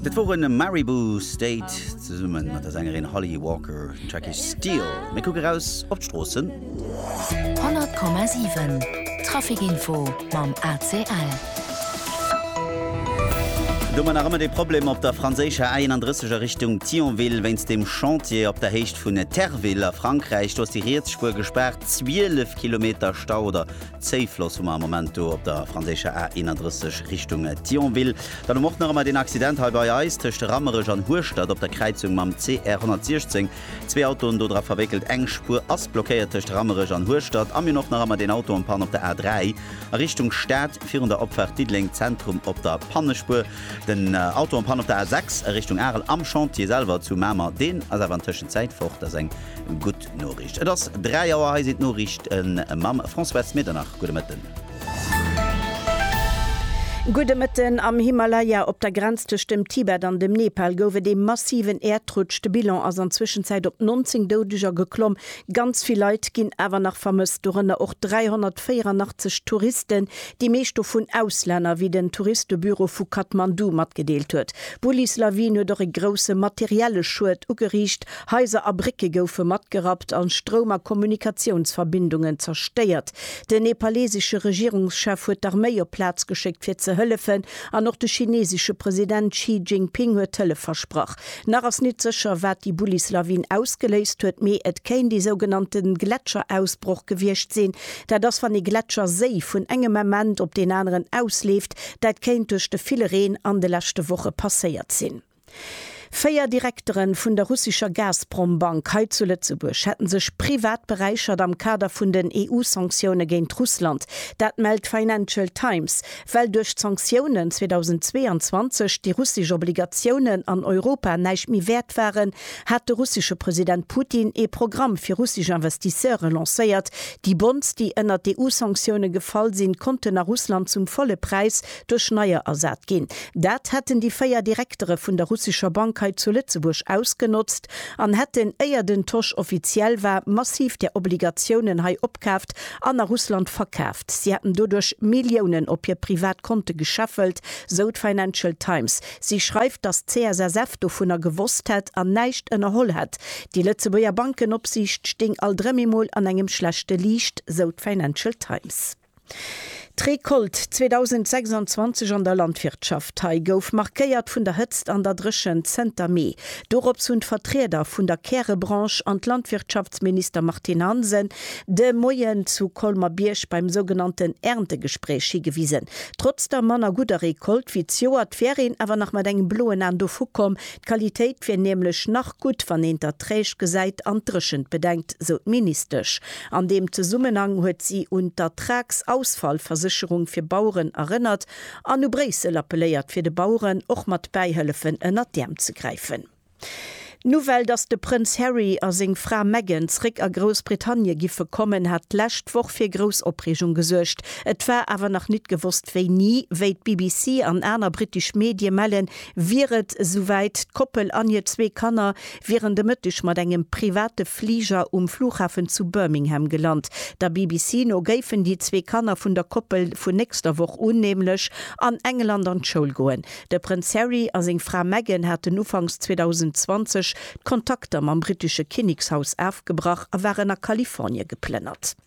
Dat woren Maribou State zesummen mat der Sängerin Holly Walker. Den Track heescht Steel. Mir kucke raus op d'Stroossen. 100,7 Traficinfo mam ACL. Domat nach ëmmer dee Problem op der franséischer A31 a Richtung Thionville wéinst dem Chantier op der Héicht vun Terville a Frankräich. Do ass déi riets Spuer gespaart, 12 Kilometer Stau oder Zéifloss hu mer am Moment do op der franséischer A 31 Richtung Thionville. Dann hu mer och nach ëmmer deen Accident hei bei eis tëscht Rammerech an Hueschtert op der Kräizung mam CR 116. Zwee Autoen dodra verwéckelt, eng Spuer ass blockéiert tëscht Rammerech an Hueschtert. A mir hunn och nach ëmmer deen Auto en panne op der A 3 a Richtung Stad virun der Opfaart Diddeleng Zentrum op der Pannespuer. Den Auto en panne op der A 6 a Richtung Arel am Chantier selwer zu Mamer, deen ass awer an Tëschenzäit fort. Dat ass eng gutt. D'Noriicht. Et ass 3 Auer, hei sinn d'Noriichte mam Françoise Medernach. Gudde Mëtten. Gudde Mëtten. Am Himalaya, op der Grenz tëscht dem Tibet an dem Nepal, gouf et ee massiven Äerdrutsch. De Bilan ass an Zwëschenzäit op 19 Doudeger geklomm. Ganz vill Leit ginn awer nach vermësst, dorënner och 384 Touristen, déi meescht dovun Auslänner, wéi den Touristebüro vu Kathmandu matgedeelt huet. D'Bullis-Lawin huet och e grousse materielle Schued ugeriicht Haiser a Brécke goufe matgerappt a Stroum a Kommunikatiounsverbindungen zerstéiert. Den nepalesesche Regierungschef huet d'Arméi op d'Plaz geschéckt fir ze hëllefen an och de chinesesche President Xi Jinping huet Hëllef versprach. Nach ass nit sécher wat déi Bullislawin ausgeléist huet, mee et kéint ee sougenannte Gletscherausbroch gewiescht sinn. Dat ass wann ee Gletscherséi vun engem Ament op deen aneren ausleeft. Dat kéint duerch de ville Reen an de leschte Woche passéiert sinn. Véier Direktere vun der russescher Gazprom-Bank hei zu Lëtzebuerg hätte sech privat beräichert am Kader vun den EU-Sanktioune géint Russland. Dat mellt d'Financial Times. Well duerch d'Sanktiounen 2022 déi russesch Obligatiounen an Europa näischt méi wäert waren, hat de russesche President Putin ee Programm fir russesch Investisseure lancéiert. Déi Bonds, déi ënnert d'EU-Sanktioune gefall sinn, konnten a Russland zum volle Präis duerch neier ersat ginn. Dat hätten déi véier Direktere vun der russescher Bank hei zu Lëtzebuerg ausgenotzt an hätten, éier den Tosch offiziell war, massiv där Obligatiounen hei opkaaft an a Russland verkaaft. Si hätten doduerch Milliounen op hir privat Konte gescheffelt, sou d'Financial Times. Si schreift, datt d'CSSF dovunner gewosst hätt an näischt ënnerholl hätt. Déi Lëtzebuerger Bankenopsiicht stéing alt erëm emol an engem schlechte Liicht, sou d'Financial Times. D'Recolte 2026 an der Landwirtschaft hei gouf markéiert vun der Hëtzt an der Dréchent zënter Mee. Dorops hunn d'Vertrieder vun der Kärebranche an d'Landwirtschaftsminister Martine Hansen de Moien zu Colmer-Bierg beim sougenannten Erntegespréich higewisen. Trotz der manner gudder Recolte wéi d'Joert wär een awer nach mat engem bloen An dovu komm. D'Qualitéit wier nämlech nach gutt, wann een d'Erträg gesäit an d'Dréchent bedenkt, sou d'Ministesch. An deem Zesummenhang huet si un d'Ertragsausfallversécherung fir Baueren erënnert an u Bréissel appelléiert fir de Baueren och mat Bäihëllefen ënnert d'Äerm ze gräifen. D'Nouvelle, datt de Prënz Harry a seng Fra Meghan zeréck a Groussbritannie giffe kommen, hat d'lescht Woch fir grouss Opreegung gesuergt. Et war awer nach nit gewosst wéini. Wéi d'BBC an aner brittesch Medie mellen, wier et esouwäit, D'Koppel an hir zwee Kanner wieren de Mëtteg mat engem private Fliger um Flughafen zu Birmingham gelant. Der BBC no géifen déi zwee Kanner vun der Koppel vun nächster Woch un nämlech an England an d'Schoul goen. De Prënz Harry a seng Fra Meghan haten ufanks 2020 d'Kontakter mam brittesche Kinnekshaus afgebrach a waren a Kalifornie geplënnert.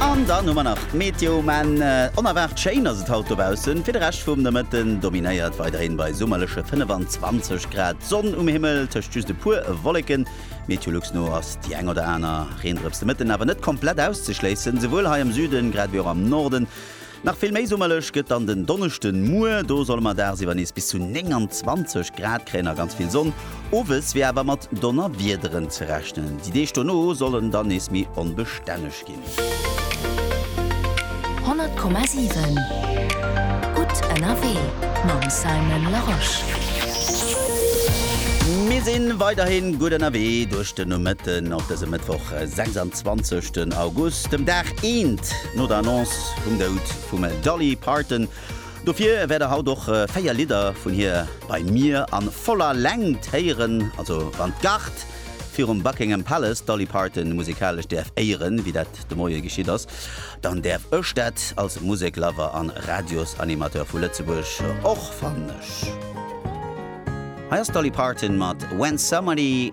An dann hu mer nach d'Meteo, mä onerwaart schéin ass et haut dobaussen. Fir de Rescht vum Nomëtten dominéiert weiderhin bei summerleche 25 Grad d'Sonn um Himmel, tëscht just e puer Wolleken. Meteolux no ass déi eng oder aner Reendrëps de Mëtten awer net komplett auszeschléissen, souwuel hei am Süden grad ewéi och am Norden. Nach vill méi summerlech gëtt dann den Donneschden. Muer do solle mer dagsiwwer nees bis zu 29 Grad kréien a ganz vill Sonn. Owes wier awer mat Donnerwiederen ze rechnen. Déi Deeg dono sollen dann nees méi onbestänneg ginn. 100,7 Gutt ënnerwee mam Simon Larosche. Mir si weiderhin gutt ënnerwee duerch de Nomëtten op dësem Mëttwoch, 26 August, dem Dag eent no der Annonce, Haut um Doud vum Dolly Parton. Dofir wäert der haut och 4 Lidder vun hir bei mir a voller Längt héieren. Also wann d'Gard virum Buckingham Palace d'Dolly Parton musikalesch däerf éieren, wéi dat de Moie geschitt ass, dann däerf ech dat als Musek-Lover an Radiosanimateur vu Lëtzebuerg och fannen. Ech. Hei ass d'Dolly Parton mat When Somebody.